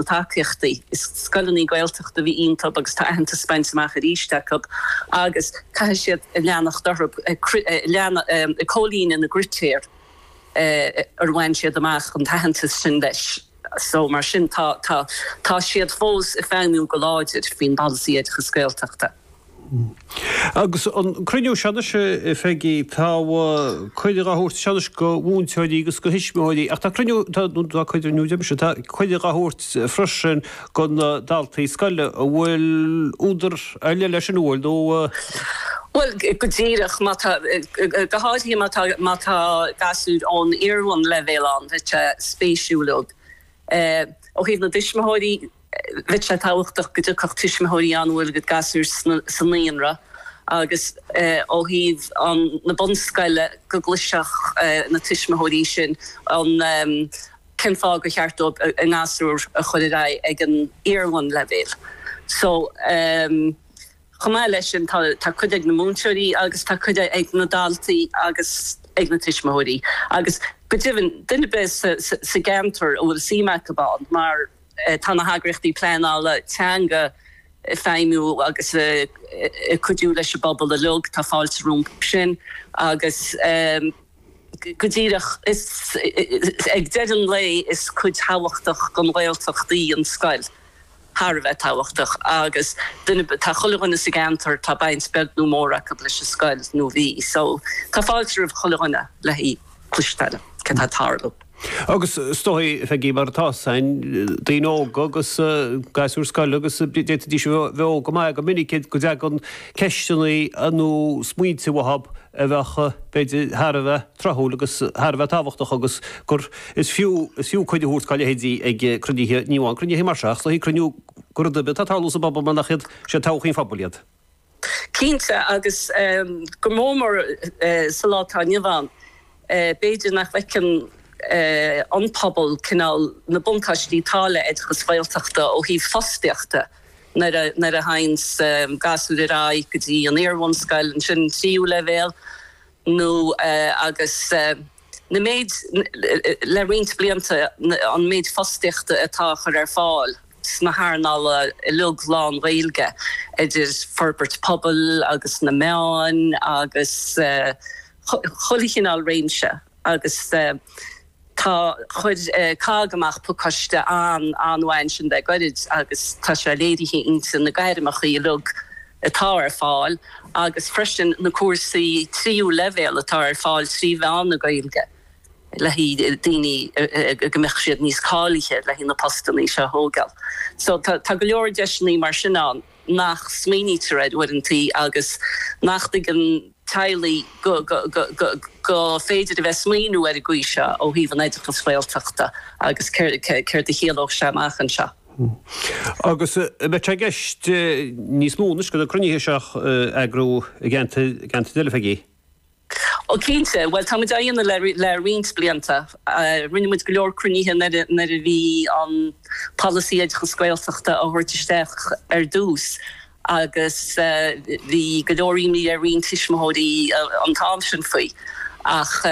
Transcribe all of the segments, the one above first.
na tacaíochtaí. Is scoileanna Gaeltachta a bhí iontu agus tá aitheantas bainte amach arís acu agus caithfidh siad a leanacht orthu ag comhlíonadh na gcritéar ar bhain siad amach an t-aitheantas sin leis. Mar sin tá siad fós ag feidhmiú go láidir faoin bPolasaí Oideachas Gaeltachta. Agus an cruinniú seo anois, a Pheigí, tá cuireadh á thabhairt anseo anois go mhúinteoirí agus go thuismitheoirí ach tá cruinniú, tá cruinniú deir mise, tá cuireadh á thabhairt freisin go na daltaí scoile. An bhfuil údar ar leith leis sin, an bhfuil, nó? Bhuel, go díreach, má tá, go háirithe má tá, má tá gasúir ón iarbhunleibhéal ann, tá sé spéisiúil ó thaobh na dtuismitheoirí, Bheadh sé tábhachtach go dtiocfadh tuismitheoirí ann a bhfuil a gcuid gasúr sa naíonra agus ó thaobh na bunscoile go gcloisfeadh na tuismitheoirí sin cén fáth gur cheart dóibh a ngasúr a chur ar aghaidh ag an iarbhunleibhéal. So chomh maith leis sin tá cuireadh ag na múinteoirí agus tá cuireadh ag na daltaí agus ag na tuismitheoirí agus go deimhin duine ar bith sa gceantar a bhfuil suim acu ann mar Tá na heagraíochtaí pleanála teanga ag feidhmiú agus ag cuidiú leis an bpobal uilig, tá fáilte rompu sin agus go díreach ag deireadh an lae is cuid thábhachtach den Ghaeltacht í an scoil, thar a bheith tábhachtach, agus tá chuile dhuine sa gceantar, tá baint beag nó mór acu leis an scoil nó bhí, so tá fáilte roimh chuile dhuine le go. gcloise siad céard atá ag tarlú. Agus is dóigh, Pheigí, mar atá sé ansin, daoine óga agus gasúir scoile agus d'fhéadfaidís a bheith óg go maith go minic, go dtagann ceisteanna nó smaointe uathu a bheadh, b'fhéidir, thar a bheith tráthúil agus thar a bheith tábhachtach agus gur, is fiú, is fiú cuireadh a thabhairt dá leithéidí ag cruinnithe, ní amháin cruinnithe mar seo ach cruinniú go rudaí atá ag tarlú sa bpobal mar nach iad, siad todhchaí an phobail iad. Cinnte, agus go mór mór sa lá atá inniu ann, b'fhéidir nach bhfeiceann an pobal cineál na buntáistí atá le oideachas Gaeltachta ó thaobh fostaíochta nuair a théanns gasúir ar aghaidh go dtí an iar-bhunscoil, ansin an tríú leibhéal, nó agus. na méid, le roinnt blianta, an méid fostaíochta atá á chur ar fáil sna hearnála uilig lán-Ghaeilge, idir forbairt pobail agus na meáin agus chuile chineál réimse. Agus tá, chuir COGG amach pacáiste an-an-mhaith ansin le gairid agus tá sé léirithe inti na gairmeacha uilig, atá ar fáil agus freisin na cúrsaí tríú leibhéal atá ar fáil trí mheán na Gaeilge le haghaidh daoine go mbeadh siad níos cáilithe le haghaidh na postannaí seo a thógáil. So tá go leor deiseannaí mar sin ann nach smaoinítear orthu uaireantaí agus nach dtuigeann teaghlaigh go go féidir a bheith smaoiniú ar an gcaoi seo ó thaobh an oideachas Ghaeltachta agus céard a chiallódh sé amach anseo. Agus beidh sé i gceist níos mó anois go dtí na cruinnithe seo a eagrú i gceantair eile, Peggy? Ó cinnte, bhuel tá muid á dhéanamh le le roinnt blianta. Rinne muid go leor cruinnithe nuair a nuair a bhí an polasaí oideachas Gaeltachta á thabhairt isteach ar dtús. agus bhí go leor imní ar roinnt tuismitheoirí an t-am sin faoi, ach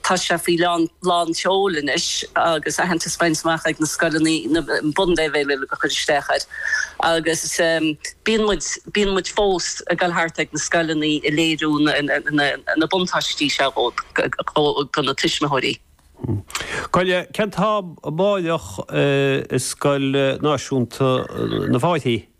tá sé faoi lán tseoil anois agus aitheantas bainte amach ag na scoileanna, na bunleibhéil uile ag cur isteach air, agus bíonn muid, bíonn muid fós ag dul thart ag na scoileanna a léiriú na buntáistí seo do na tuismitheoirí. Cogar, cén t-am go baileach i Scoil Náisiúnta na bhFáithí?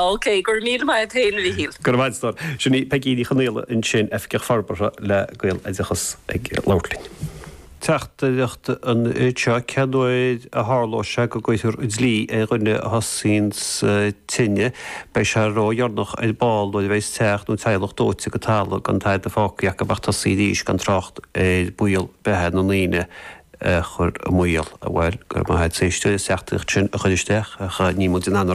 OK, go raibh míle maith a'd féin, a Mhíchíl. Go raibh a'd, a stór. Sin í Peigí Ní Chonaola ansin, Oifigeach Forbartha le Gaeloideachas ag labhairt linn. Teachtaireacht anseo, Cén uair a tharlóidh sé go gcuirfear dlí ar dhuine a thosaíonn an tine? Beidh sé ródheireanach ar ball nuair a bheidh teach nó teaghlach dóite go talamh gan tada fágtha acu ach tosú arís, gan trácht ar bhaol beatha na ndaoine a chur i mbaol. Bhuel, go raibh maith a'd as an teachtaireacht sin a chur isteach ach ní mór di an